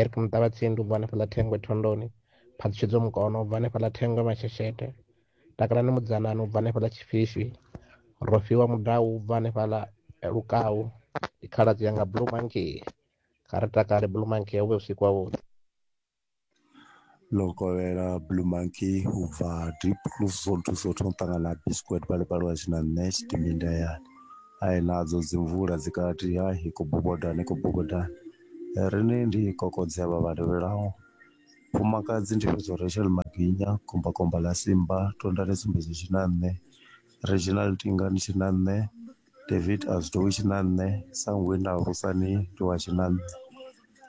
Eric Muṱavhatsindi u bva hanefhaḽa Thengwe Thondoni, Phaṱhutshedzo Mukono u bva hanefhaḽa Thengwe Masheshete, Takalani Mudzanani u bva hanefhaḽa Tshifishwi, Rofhiwa Mudau u bva hanefhaḽa Lukau, ndi khaladzi yanga Blue Monkey. Kha ri takale Blue Monkey, hu vhe vhusiku havhuḓi. Ḽo kovhela blue monkey u bva deep lu si zwone thusa u thoma u ṱangana na biscuit vha lifha lwa tshina nṋe tshidindi ndi hayani hai nadzo dzi mvula dzi kati ha i khou boboḓana i khou boboḓana riṋe ndi kokodza havha vha tevhelaho mufumakadzi ndi fhedza uri Rachel Maginya kumba kumba ḽa simba tondani sumbedzo tshina nṋe regional tingani tshina nṋe. David a zwi tou tshi na nṋe sa ngwe nda alusa ni ndi wa tshi na nṋe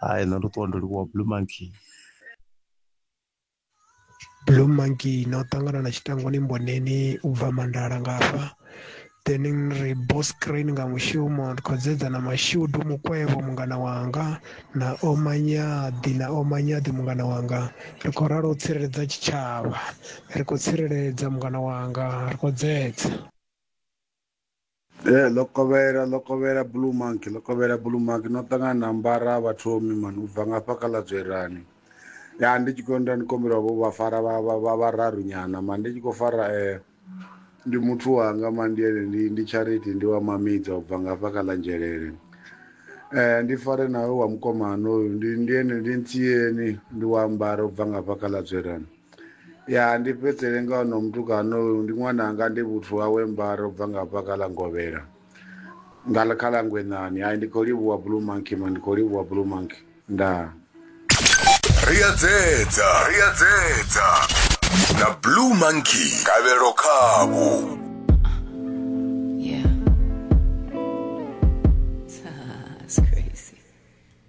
hai nṋe ndo ṱuwa ndo livhuwa blue monkey blue monkey na u ṱangana na tshitangani mboneni u bva mandala nga hafha then ri boss crane nga mushumo ndi khou dzedza na mashudu mukwevho mungana wanga na omanyaḓi na omanyaḓi mungana wanga ri khou ralo u tsireledza tshitshavha ri khou tsireledza mungana wanga ri khou dzedza Eh, ḽo kovhela ḽo kovhela blue monkey ḽo kovhela blue monkey no ṱangana na mbara vhathomi mani u bva ngafha kha ḽa dzwerani ya ndi tshi khou nda ndi kombela vho vha fara vha vha vha vhararu nyana mani ndi tshi khou fara eh ndi muthu wanga mani ndi ene ndi ndi charity ndi wa mamidza u bva ngafha kha ḽa nzhelele eh ndi fare nawe wa mukomana hoyu ndi ndi ene ndi ntsieni ndi wa ambara u bva ngafha kha ḽa dzwerani Ya ndi fhedzele nga ono mutukana oyu ndi ṅwananga ndi vhuthu hawe mbaro bva nga hafha kha ḽa ngovhela nga kha ḽa ngwenani hai ndi khou livhuwa blue monkey ma ndi khou livhuwa blue monkey ndaa Ri a dzedza, ri a dzedza. Na Blue Monkey kavhelo khavho. Yeah. That's crazy.